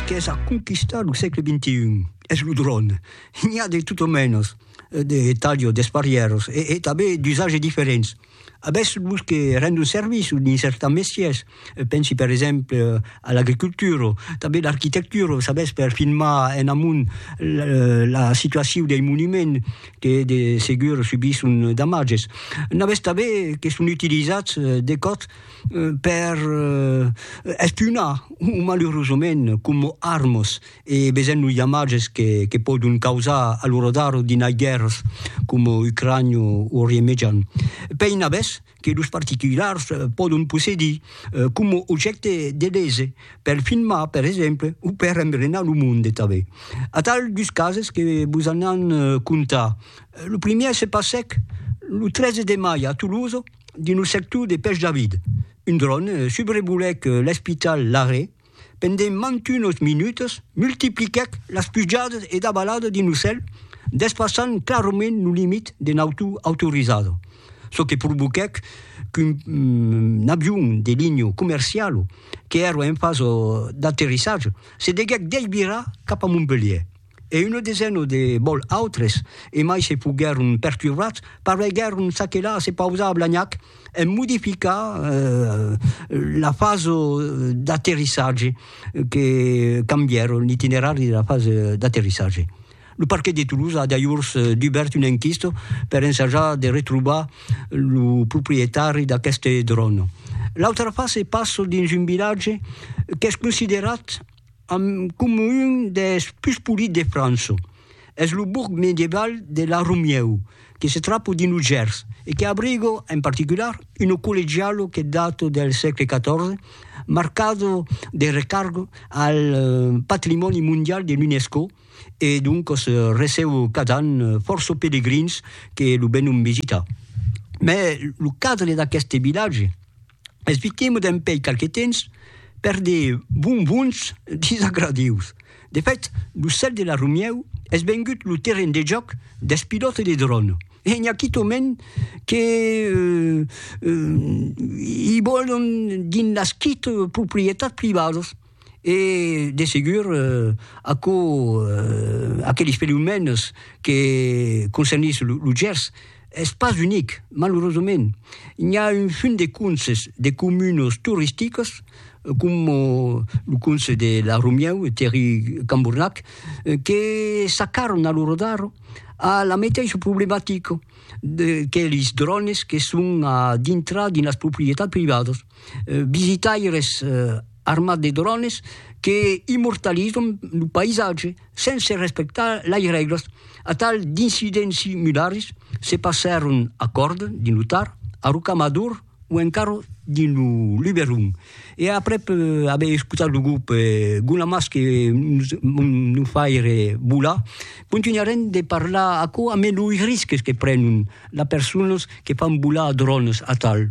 Qu'es a conquistar lo sègle XXI, es lo dròn. N'i a de tot o mènos, de talho desparièros e tanben d'usatges diferents. Avètz los que rendon servici dins certan mestièrs, pensi per exemple a l'agricultura, tanben l'arquitectura, o s'avètz per filmar en amont la situacion dei monuments que de segur subisson damatges. N'avètz tanben que son utilizats de còth, per espunar o malurosament coma armas e besent los damatges que pòdon causar a lo radar d'inai guèrras coma Ucrània o Orient Mejan. Pei navès que los particulars pòdon possedir coma objècte de lese per filmar per exemple o per embrenar lo monde tanben. Atal dus cases que vos anàn contar. Lo primièr se passèc lo 13 de mai a Tolosa, dins lo sector de Pech David. Un dron subrevolèc l'espital Laré pendent mantunos minutas, multipliquèc las pujadas e davaladas dins lo cèl, despassant clarament lo limit de nautor autorizada, çò que provoquèc qu'un avion de linha comerciala, qu'èra en fasa d'aterrissatge, se deguèc desvirar cap a Montpelhièr. e una desena de bòl autres, e mai se foguèron perturbats, pareguèron s'aquelar, se pausar a Blagnac e modificar la fasa d'aterrissatge, que cambièron l'itinerari de la fasa d'aterrissatge. Lo parquet de Toulouse a dajors dubèrt una enquista per ensajar de retrobar lo proprietari d'aqueste dròn. L'autra fasa passa dins un vilatge qu'es considerat, amb coma un des pus polits de França. Es lo borg medieval de La Romieu, que se trapa dins lo Gers e que abriga, en particular, una collegiala que data del sègle XIV, marcada de recarga al patrimòni mondial de l'UNESCO e doncas receba cada an fòrça pelegrins que lo venon visitar. Mai lo cadre d'aqueste vilatge, Esvitemo dempèi qualque temps per de bonbons disagradius. De fèt, lo cèl de la Romièu es vengut lo terren de jòc dels pilòtes de dròn e n'i a quitòment que i vòlon dins las quite proprietats privadas. e de segur aquò aqueles fenomèns que concernís lo Gers es pas unic, malurosament n'i a un funt de conses de comunes toristicas coma lo conse de la Romièu e Terri Cambornac que s'acarran a lo rodar a la meteissa problematica d'aqueles drònes que son a dintrar dins las proprietats privadas visitaires armat de drònes que immortalizan lo païsatge sense respectar las règlas. Atal d'incidents similars se passèron a Còrdon, dins lo Tar, a Rocamador o encara dins lo Luberon. E aprèp aver escotat lo grop Gonamas que nos faire volar, continuarem de parlar aquò ambe los risques que prenon las personas que fan volar drònes atal.